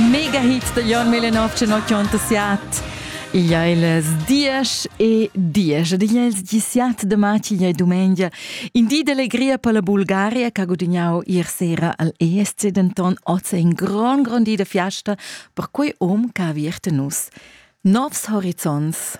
Mega Hit da Jon Millenov 1987. Il è il dies e dies ed igl è il disiat de matg igl è dumengia. In di d'allegria per la Bulgaria che ha gudagnau ier sera al ESC denton oz in gran gran di de fiasta per quei um che ha viert nus. Novs horizonts.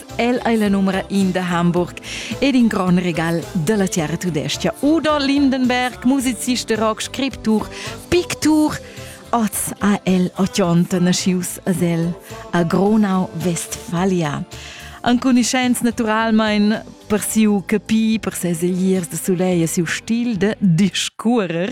El ei la numera in da Hamburg ed in gron regal dalla terra tudescha. Udo Lindenberg, musicist de rock, scriptur, pictur, oz a el otionta naschius a el a Gronau, Vestfalia. Ancuniscenz naturalmein per siu capi, per ses egliers de soleil e siu stil de discuorer.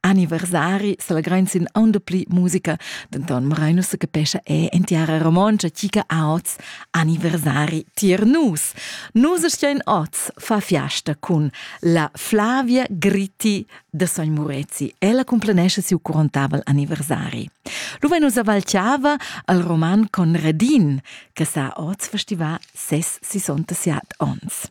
Anniversari sel grein sin aunda pli musica, denton morein nus capescha e en tiara romontscha chi che ha oz anniversari tier nus. Nus stein oz fa fiasta cun la Flavia Gritti de Sogn Murezi. Ella cumplenesce siu curontavel anniversari. Luve nus avalciava al roman Conradin, che sa oz festiva ses 60 onns.